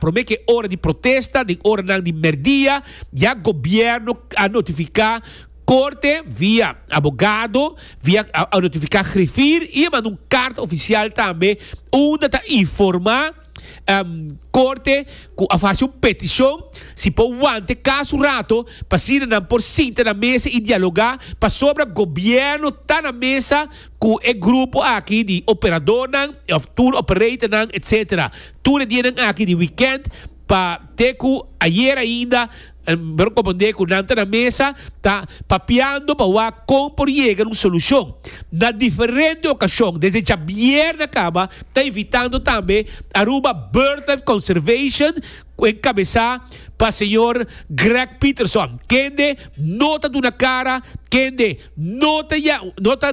Prome ke ora di protesta den oranan di merdia ya gobierno a notifica Corte via abogado, via a notifica grifir y a manda un carta oficial tambe unda ta informa Corte cu a face un peticion si por wanta e caso un rato pasina nan por sinta na mesa y dialoga pasobra gobierno ta na mesa cu e grupo aki di operadornan of tour operatornan etc. tur e dianan aki di wikènt pa te ku ayer ainda nan komprondé ku nan ta na mesa ta papiando pa wak kon por yega na un solushon na diferente okashon. Desde djabièrnè a kaba ta invitando tambe Aruba Birdlife Conservation ku enkabesá pa señor Greg Peterson kende no ta duna kara, kende no ta no ta.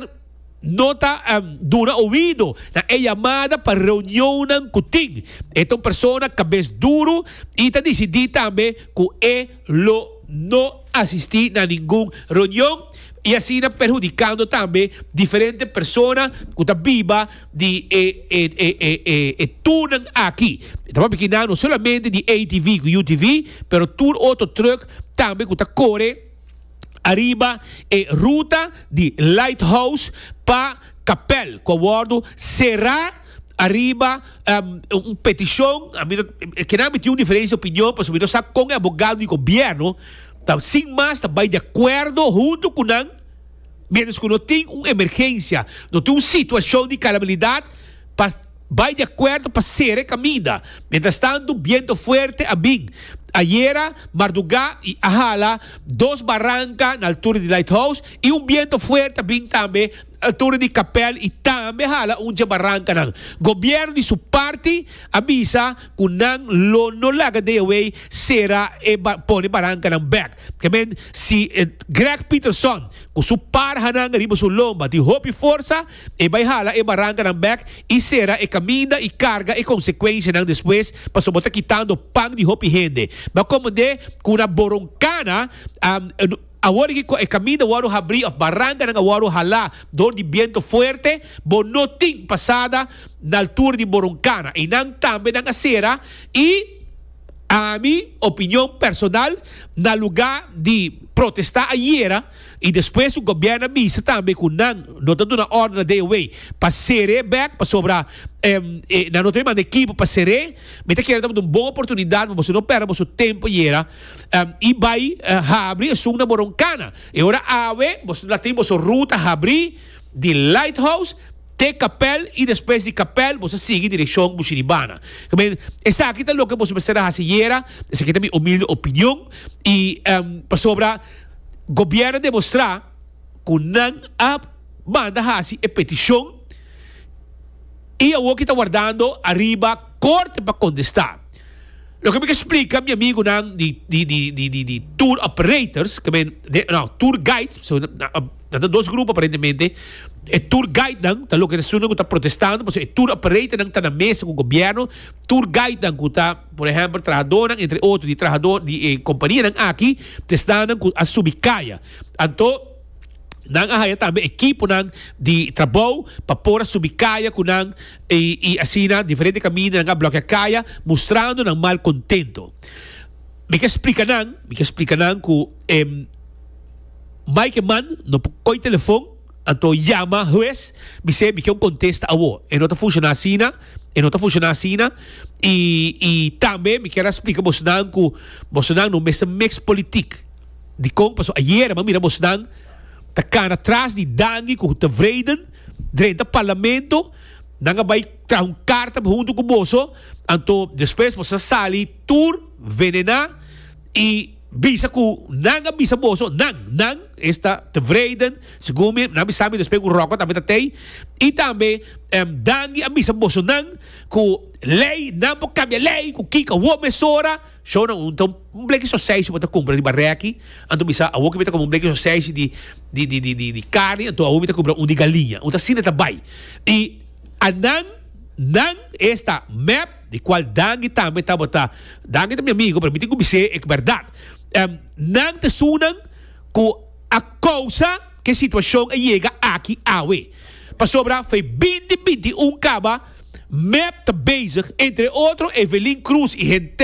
No ta duna oido na e yamada pa reunionnan ku tin. E ta un persona kabes duru i ta disidí tambe ku e lo no asistí na ningun reunion i asina perhudikando tambe diferente persona ku ta biba di e turnan aki. Ta papia kina no solamente di ATV ku UTV, pero tur otro trùk tambe ku ta kore. ariba e ruta di Lighthouse pa Kapel ku a wòrdu será ariba un petishon. Kinan mi tin un diferensia opinion pasobra mi no sa kon e abogado di gobièrnu ta sin mas ta bai di akuerdo huntu ku nan miéntras ku no tin un emergensia, no tin un situashon di kalabilidat pa. Bai di akuerdo pa sera e kaminda. Mientras tantu biento fuerte a bin. Ayera marduga i a hala dos baranka na altura di Lighthouse i un biento fuerte a bin tambe na altura di Kapel i tambe a hala un dje barankanan. Gobierno di su parti a bisa ku nan lo no laga deaway sera e pone barankanan bek. Ke men si Greg Peterson ku su par hanan riba su lomba tin hopi forsa. E bai hala e barankanan bèk i sera e kaminda i karga e konsekuenshanan despues, pasobra bo ta kitando pan di hopi hende. Bo a komprendé ku una boronkana awor di ku e kaminda a wòrdu habrí òf barankanan a wòrdu halá dor di bientu fuerte, bo no tin pasada na altura di boronkana. Einan tambe nan a sera i, ami opinion personal, na lugá di protestá ayera, I despues su gobièrnu a bisa tambe ku nan no ta duna òrdu na DOW pa ser'é e bèk pasobra nan no ta bin manda ekipo pa ser'é. Mi ta kere tabata un bon oportunidat pa boso no pèrdè boso tempu yera i bai habri esun na Boron Kana. E ora awe boso la tin boso ruta habrí di Lighthouse te Kapèl i despues di Kapèl boso a sigui direkshon Bushiribana. I men esaki ta loke boso mester a hasi yera, esaki ta mi humilde opinion i pasobra. Gobierno a demostra cu nan a manda haci e peticion y awor ki ta wardando ariba Corte pa contesta. Loke mi ke splica mi amigunan di di tour operators, ke men, no, tour guides, pasobra nan ta dos grupo aparentemente, e tour guidenan ta loke esunnan cu ta protestando, pasobra e tour operatornan ta na mesa cu Gobierno, tour guidenan cu ta. Por ehempel, trahadornan, entre otro di trahador di e kompanianan aki, ta esnanan ku a subi kaya. Anto, nan a haya tambe ekiponan di trabou pa por a subi kaya ku nan i asina diferente kaminda nan a blokia kaya, mustrando nan mal kontento. Mi ke splika nan, mi ke splika nan ku e mai ke man no por koi telefon, Anto yama hues bis'é mi ken kontesta awo, e no ta funshoná asina, e no ta funshoná asina, i i tambe mi kier a splika bosnan ku bosnan no mester miks politik. Dikon? Paso ayera mi a mira bosnan ta kana tras di dangi ku ta vreden drenta parlamento, nan a bai traha un karta huntu ku boso, anto despues boso ta sali tur venená i. Bisa cu nan a bisa boso, nan, nan esta tevreden, segun mi, nan mi sa mi no spera cu Rocco tambe ta tey, y tambe Dandy a bisa boso nan cu ley, nan por cambia ley cu kico awo mesora, show nan un ta un bleki soseyshi bo ta cumpra riba reki, anto mi sa awo cu mi ta coma un bleki soseyshi di di di di di di carni anto awo mi ta cumpra un di galiña, un ta asina ta bay y a nan, nan esta mep. Di cual Dangi tambe tabata. Dangi ta mi amigo, pero mi tin cu bis'é e berdad. Nan ta esunnan cu a causa cu e situacion a yega aki awe. Pasobra f'e binti bintiun caba, mep ta bezig, entre otro Evelyn Cruz y henter,